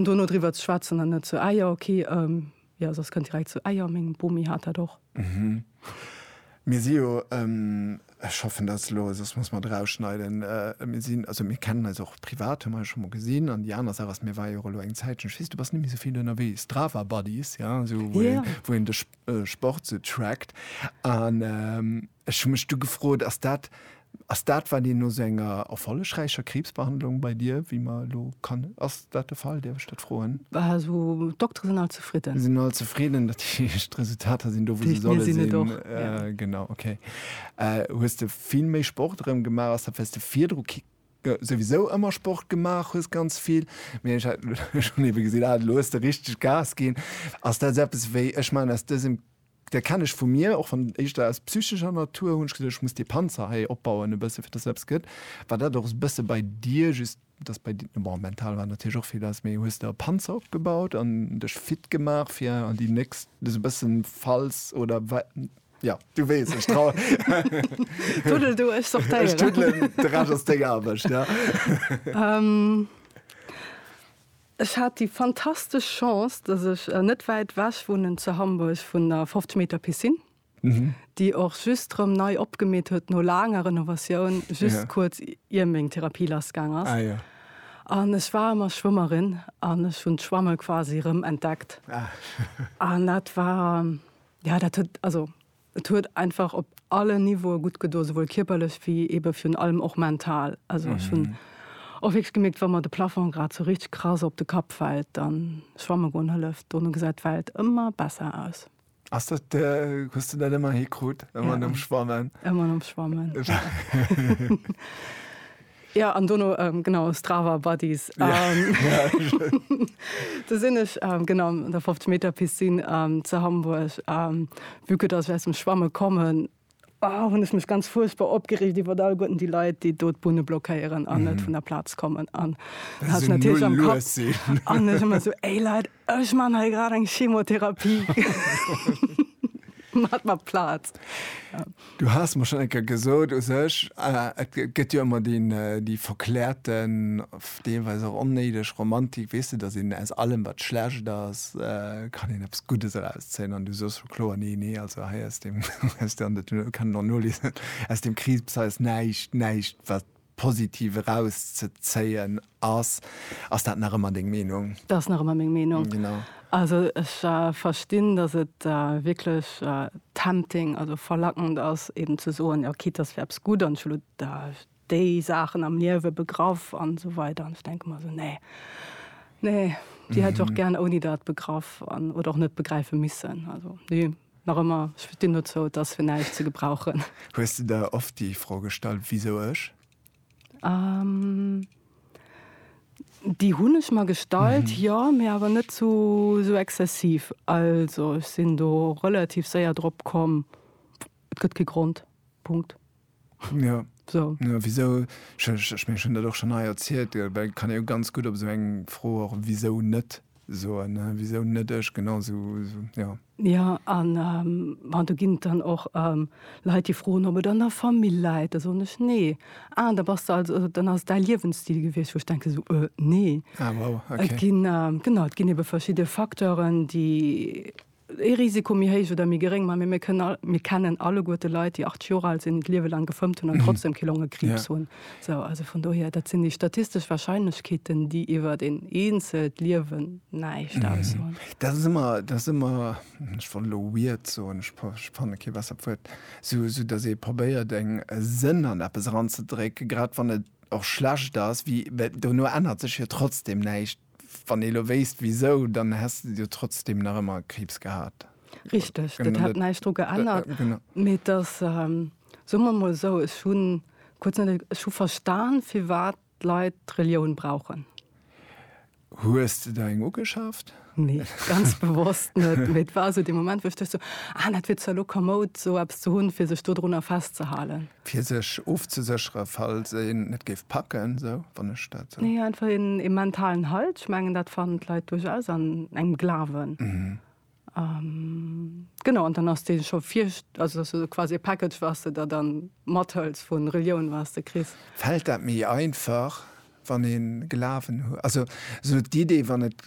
Dono driwwer ze schwätzen an net zu Eier, ok. Jo, soss kënnt direkt zu Eier. Meng Bomi hat dat och. Mir si jo, ech hoffen dat ass elo, soss muss mer et erausschneiden, mir sinn, also mir kennen eis och privat, hu mer eis scho mol gesinn. An déi aner Saach ass, mir waren jo och elo eng Zäitchen, ech weess, du bass net méi esou vill ënnerwee, Strava Buddies, jo, esou wou een de Sport esou trackt. An Ech hu mech du gefrot, ass dat ass dat, wat een no sou enger erfollegräicher Kriibsbehandlung bei dir, wéi mer elo kann, ass dat de Fall? Däerf ech dat froen? Also d'Doktere sinn all zefridden. Sinn all zefridden, dat heescht d'Resultater sinn do, wou se solle sinn. Genau, okay. Hues de vill méi Sport erëm gemaach? Ass dat, well s de virdru souwisou ëmmer Sport gemaach hues, ganz vill, mee ech hat elo ewéi gesinn, ah elo hues de richteg Gas ginn. Ass dat sou eppes wéi, ech maachen aus dësem Dei kenn ech vu mir och wann éischter aus psychescher Natur hunn ech gesot ech muss dee Panzer hei opbauen e bësse fir dass eppes gëtt. War dat och e bësse bei dir just dass bei dir bon mental war natierlech och vill ass mee hues de e Panzer opgebaut an dech fit gemaach fir an déi nächst sou e bëssen falls oder wa jo du weess ech trau Tuddel du ech sortéieren Ech tuddelen de Rescht ass deng Aarbecht jo. Ech hat déi fantastesch Chance, dass ech net wäit wech wunnen zu Hamburg vun der 50 Meter Piscine, déi och just rëm nei opgemeet huet no laanger Renovatioun, just kuerz ier meng Therapie lassgaang ass. An ech war ëmmer Schwëmmerin an ech hunn d'Schwamme quasi rëm entdeckt. An dat war, jo, dat huet, also Et huet einfach op allen Niveaue gutt gedoen, souwuel kierperlech wéi eebe virun allem och mental. Also ech hunn och wierklech gemierkt, wa mer de Plafong grad esou richteg krass op de Kapp fält, da schwamme goen hëlleft. Dono gesäit d'Welt ëmmer besser aus. Ass dat, hues de dat ëmmer hikrut? Ëmmer nom Schwammen? Ëmmer nom Schwammen. Ja an dono genau Strava Buddies do sinn ech genau an der 50 Meter Piscine ze Hamburg vu que dass ech aus dem Schwamme kommen hunn ech mech ganz fuerchtbar opgereegt iwwer all Goeten déi Leit, déi do d'Bunne blockéieren an net vun der Plaz kommen an hat natierlech am Kapp an ech ëmmer esou, Ey Leit, Ech man hei grad eng Chemotherapie mat mat Plaz. Du has mer schon enker gesot u sech äh, et gëtt jo ëmmer deen äh, déi verklärten, deelweis och onnéideg Romantik, weess de, datt een aus allem wat schlecht ass, äh, kann een eppes Guddes erauszéien an du soos scho kloer, nee, nee, also hei aus deem, aus deem, an dat kann een och noliesen, aus deem Kriibs hei ass näischt, näischt wat Positiv eraus ze zéien ass. Ass dat nach ëmmer deng Meenung? Dat ass nach ëmmer meng Meenung. Genau. Also ech verstinn, datt et wierklech tempting, also verlackend ass eeben ze soen, jo quitte dass fir eppes gutt an ech hu déi Saachen am Liewe begraff an esou weider an ech denke mer esou nee, nee déi hätt ech och gären ouni dat begraff an oder och net begräife missen. Also nee. Nach ëmmer, ech stinn dozou, et ass fir näischt ze gebrauchen. Hues de der oft déi Fro gestallt, wisou ech? Déi hunn ech mer gestallt, jo, mee awer net sou exzessiv. Also ech sinn do relativ séier drop komm, et gëtt kee Grond. Punkt. Ja. So. Ja, wisou, ech, ech, ech mengen, ech hunn dat och schonn hei erzielt, äh, well kann ee jo ganz gutt op esou eng Fro och wisou net soen, ne? Wisou net ech? Genau sou, sou, ja. Ja, an ähm, bon, do ginn et dann och ähm, Leit, déi froen, ob et an der Famill läit. Da soen ech, Nee. Ah, da bass de also, also dann ass et däi Liewensstil gewiescht, wou ech denke sou, Äh, nee. Ah, wow, Et okay. ginn, ähm, genau, et ginn ebe verschidde Facteuren, déi ee Risiko méi héich oder méi geréng, mä mir kënnen all, mir kennen alleguerte Leit, déi 80 Joer al sinn, d'Liewe laang gefëmmt hunn an trotzdem kee Longekriibs hunn. Sou, also vun dohier, dat sinn déi statistesch Warscheinlechkeeten, déi iwwert een eenzelt Liewen näischt aussoen. Dat ass ëmmer, dat ass ëmmer, ech wollt elo weird soen, ech fanne kee bessert Wuert, sou, sou datt ee probéiert eng, e Sënn an eppes eranzedrécken, grad wann et och schlecht ass, wéi, well dono ännert sech jo trotzdem näischt. Wann ee lo wéisst wisou, dann häss de jo trotzdem nach ëmmer Kriibs gehat. Richteg, dat hätt näischt dru geännert. Mee et ass, soe mer emol esou, ech hu kuerz net, ech hu verstan, firwat d'Leit d'Relioun brauchen. Hues de der eng ugeschaaft? Nee, ganz bewosst net. Mee et war esou dee Moment, wou ech duecht esou, ah, dat wier zwar lo komoud, esou eppes ze hunn, fir sech dodrunner festzehalen. Fir sech ofzesécheren, falls een et géif packen, esou, wann ech dat esou. Nee, einfach een, ee mentalen Halt. Ech mengen, dat fannen d'Leit duerchaus an engem Glawen. Genau, an dann ass dee scho vir, also dass du quasi e Package, was de der dann mathëls vu Relioun, was de kriss. Fält dat méi einfach, wann ee Glawen huet? Also esou d'Idee, wann et.